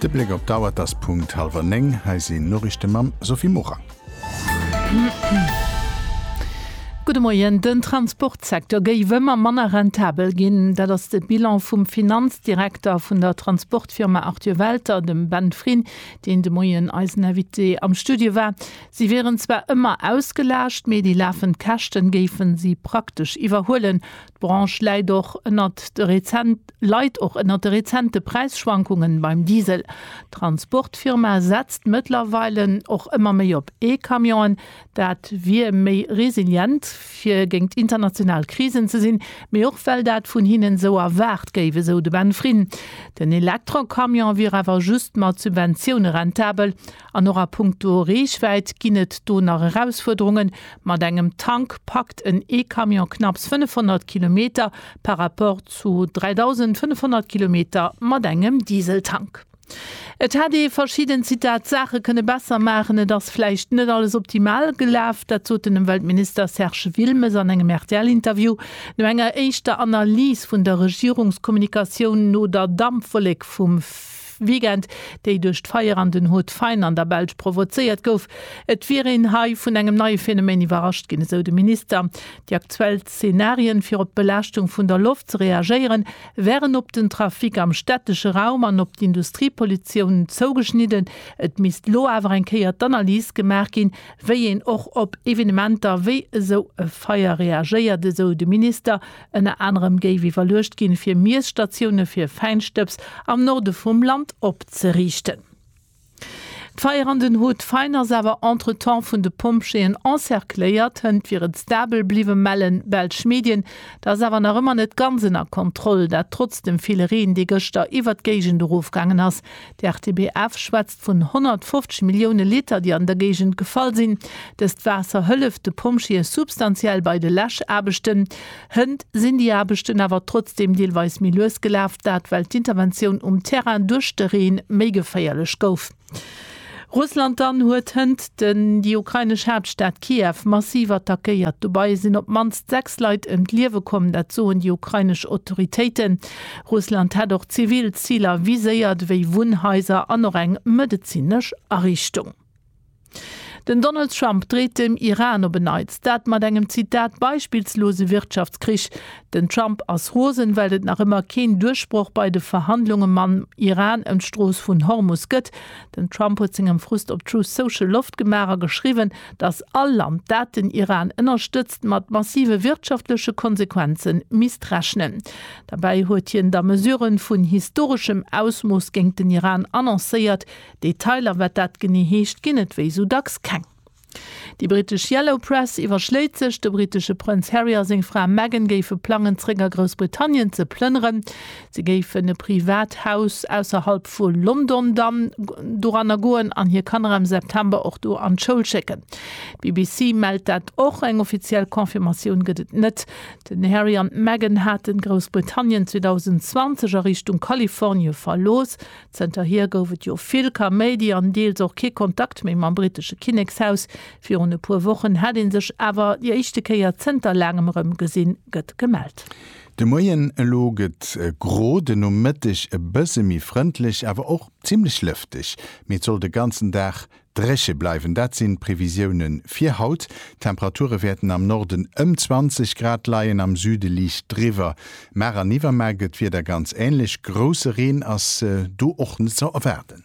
De Bléck op d'Auer, et ass Punkt hallwer néng. Hei sinn d'Noriichte mam Sophie Morang. Gudde Moien. Den Transportsecteur géif ëmmer manner rentabel ginn. Dat ass de Bilan vum Finanzdirekter vun der Transportfirma Arthur Welter, dem Ben Fryn, deen de Moien eisen Invité am Studio war. Si wieren zwar ëmmer ausgelaascht, mee déi lafend Käschten géifen si praktesch iwwerhuelen. D'Branche läit och ënnert de rezent leit och ënnert de rezente Präisschwankungen beim Diesel. D'Transportfirma setzt mëttlerweilen och ëmmer méi op E-Camionen. Dat wier méi resilient, fir géingt international Krisen ze sinn, mee och well dat vun hinnen esou erwaart géif, esou de Ben Frin. Den Elektrocamion wier awer just mat Subventioune rentabel. An och a punkto Reechwäit ginn et do nach Erausfuerderungen. Mat engem Tank packt en E-Camion knapps 500 Kilometer par rapport zu 3.500 Kilometer mat engem Dieseltank. Et hätt ee verschidden Zitat Saache kënne besser maachen. Et ass vläicht net alles optimal gelaf. Dat sot den Ëmweltminister Serge Wilmes an engem RTL-Interview no enger éischter Analys vun der Regierungskommunikatioun no der Dampwollek vum. Weekend, déi duerch d'Feier an den Haut Fine an der Belsch provozéiert gouf. Et wier een hei vun engem neie Phänomen iwwerrascht ginn, esou de Minister. Déi aktuell Zenarien, fir op d'Belaaschtung vun der Loft ze reagéieren, wären op den Trafic am stättesche Raum an op d'Industriepollutioun zougeschnidden. Et misst lo awer eng Kéier d'Analys gemaach ginn, wéi een och op Evenementer wéi esou e Feier reagéiert, esou de Minister. Ënner anerem géif iwwerluecht ginn, fir Miesstatioune fir Fäinstëbs am Norde vum Land opzeriichten. D'Feier an den Haut Fain ass awer entretemps vun de Pompjeeën encercléiert. Hënt wieren stabel bliwwen, mellen belsch Medien. Der ass awer nach ëmmer net ganz ënner Kontroll, dat trotz dem ville Reen, dee gëschter iwwer d'Géigend erofgaangen ass. De RTBF schwätzt Vun 150 Millioune Liter, déi an der Géigend gefall sinn. Dëst Waasser hëlleft de Pompjeeë substantiell bei de Läschaarbechten. Hënt sinn déi Aarbechten awer trotzdeem deelweis méi lues gelaf, dat well d'Interventioun um Terrain duerch de Reen méi geféierlech gouf. Russland dann huet hënt den déi ukrainesch Haaptstad Kiew massiv attackéiert. Dobei sinn op d'mannst 6 Leit ëm d'Liewe komm, dat soen déi ukrainesch Autoritéiten. Russland hätt och zivil Ziler viséiert, wéi Wunnhaiser an och eng medezinesch Ariichtung. Den Donald Trump dreet dem Iran op en Neits, dat mat engem Zitat beispillslose Wirtschaftskrich. Den Trump ass rosen, well et nach ëmmer keen Duerchbroch bei de Verhandlunge mam Iran ëm d'Strooss vun Hormus gëtt. Den Trump huet sengem Frust op Truth Social Loft gemaach a geschriwwen, datt all Land, dat den Iran ënnerstëtzt, mat massive wirtschaftleche Konsequenze misst rechnen. Derbäi huet hien da Mesurë vun historeschem Ausmooss géingt den Iran annoncéiert. Detailer, wat dat genee heescht, ginn et wéi esou dacks keng. Déi brittesch Yellow Press iwwerschléit sech, de brittesche Prënz Harry a seng Fra Meghan géife plangen, zeréck a Groussbritannien ze plënneren. Si géifen e privat Haus ausserhalb vu London dann doranner goen an hir Kanner am September och do an d'Schoul schécken. D'BBC mellt dat och. Eng offiziell Confirmatioun gëtt et net. Den Harry an d'Meghan hate Groussbritannien 2020 a Richtung Kalifornie verlooss. Zënterhier gouf et jo vill Kaméidi an deels och kee Kontakt méi mam brittesche Kinnekshaus. Virun e puer Wochen hätt ee sech awer déi éischte Kéier zënter laangem erëm gesinn, gëtt gemellt. De Moien, elo gëtt e gro, de Nomëtteg e bësse méi frëndlech, awer och zimmlech lëfteg. Mee et soll de ganzen Dag Dréche bleiwen, dat sinn d'Previsioune fir haut. D'Temperature wäerten am Norden ëm 20 Grad leien, am Süde liicht driwwer. Mar an iwwermar gëtt d'Wieder ganz änlech, grousse Reen ass do och net ze erwaarden.